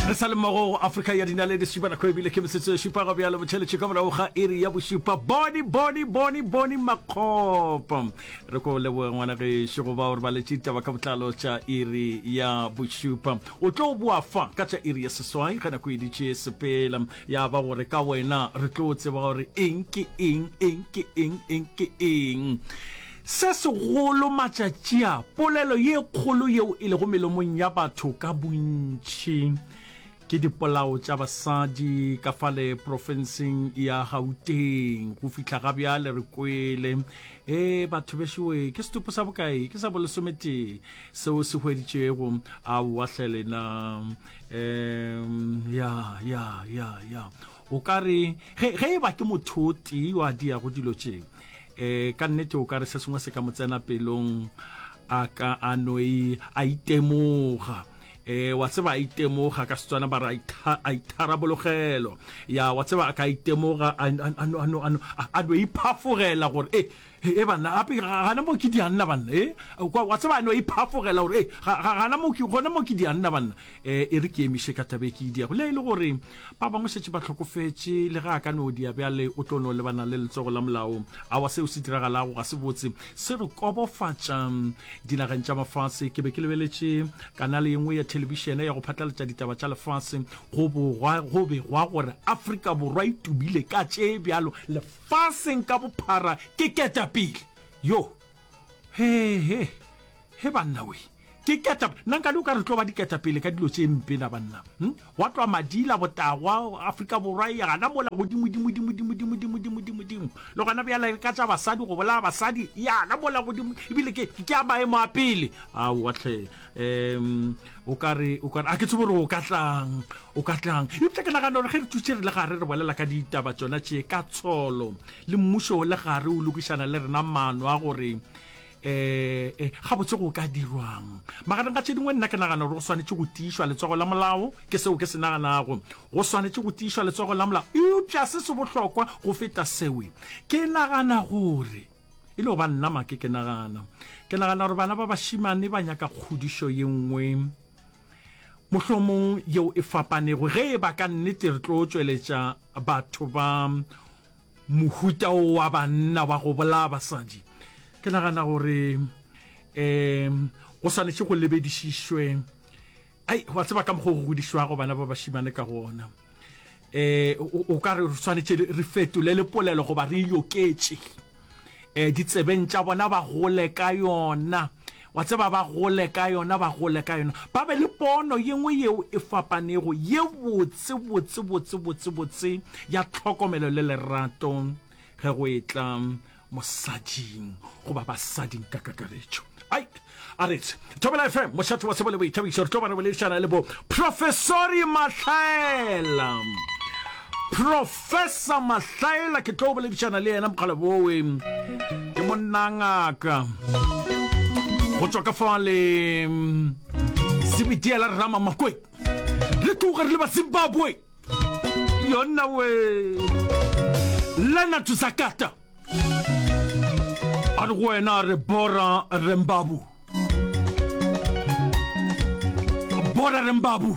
re sa le mmogo go afrika ya dinaledi šupa nako ebile ke metsotso e šupa go bjalo botšheletše ka morago ga iri ya bošupa boni boni boni boni makgopo re ko leboge ngwana gešo go ba gore ba letše ditaba ka botlalo tša iri ya bošupa o tlo boa fa ka tša iri ya seswai ge nako editše sepela ya ba gore ka wena re tlo tseba gore eng ke eng eng ke eng eng ke eng Se segolo matšatši a, polelo ye kgolo yeo e lego melomong ya batho ka bontši ke dipolao tša basadi ka fale profenseng ya Gauteng. Go fihla ga bjale re kwele, E, batho bešowe, ke setupo sa bokae? Ke sa bolesometee seo se hweditšwego? Aowa hle lena. Um, ya, ya, ya, ya. O ka re, ge, ge e ba ke motho o tee yo a diago dilo tše, e, ka nnete o ka re se sengwe se ka mo tsena pelong, a ka a no e, a itemoga e wa tseba a itemoga ka setswana ba re a itharabologelo ya wa tseba a ka itemoga a no iphafogela gore e He, he, banna, gape ga, ga, gana moo ke dianna, banna. He, kwa, wa tseba, a no e phafogela gore, he, ga, ga, gana moo ke, gona moo ke dianna, banna. E, e re ke emiše ka taba e ke e diago. Le ha e le gore ba bangwe šetše ba hlokofetše, le ge a ka no dia bjale, o tlo no lebana le letsogo la molao. Aowa, seo se diragalago ga se botse. Se re kobofatša. Dinageng tša mafase. Ke be ke lebeletše kanale ye nngwe ya thelebišene ya go phatlalatša ditaba tša lefase. Go bogwa, go begwa gore Afrika Borwa e tubile ka tše bjalo lef-. faseng ka bophara ke ketapele yo he he he banna we ke keta nna nka di o ka re tlo ba diketapele ka dilo tše mpe la banna hm? wa tloa madila botagwa afrika borwa e gana mola godimodimodimodimodimodimodimodimo le gona bjala ka tša basadi go bolaya basadi yana mola godimo ebile ke a maemo a pele aowa tlhe um o ka re o ka re a ke tsebo gore o ka tlang o ka tlang eupša ke nagana gore ge re thuse re le gare re bolela ka ditaba tsona tše ka tsholo le mmušo o le gare o lokišana le rena maano a gore um eh, eh, gabotse go ka dirwang magareng ga tše dingwe nna ke nagana gore go swanetše go tiišwa letsogo la molao ke seo ke se naganago go swanetše go tiišwa letsogo la molao eupša se se bohlokwa go feta sewe ke nagana gore e le go ba nna make ke nagana ke nagana gore bana ba bašimane ba nyaka kgodišo ye nngwe mohlomong yeo e fapanego ge e ba ka nnete re tlo tšweletša batho ba mohuta o wa banna wa go bolaya basadi ke nagana gore um go swanetše go lebedišišwe ai wa tseba ka mokgwa go godišwago bana ba bašimane ka gona eh o ka re tshwanetse re fetole le polelo goba re yoketše eh ditsebeng tša bona ba gole ka yona wa tseba ba gole ka yona ba gole ka yona ba be le pono yengwe yeo e fapanego ye botse botse botse botse botse ya tlhokomelo le lerato ge go etla mosading goba basading ka kakaretšo ai a retse thobela fm mošate wa sebo le boithabišo re tlo ba re boledišana le bo professori mahlaela professor mahlaela ke tlo boledišana le yena mokgale bowe ke monnangaka go tswa ka fa le sebitiela rrama makweng le tloga re le ba zimbabwe yona we lena thusa kata a re go wena re bora rembabu bora rembabu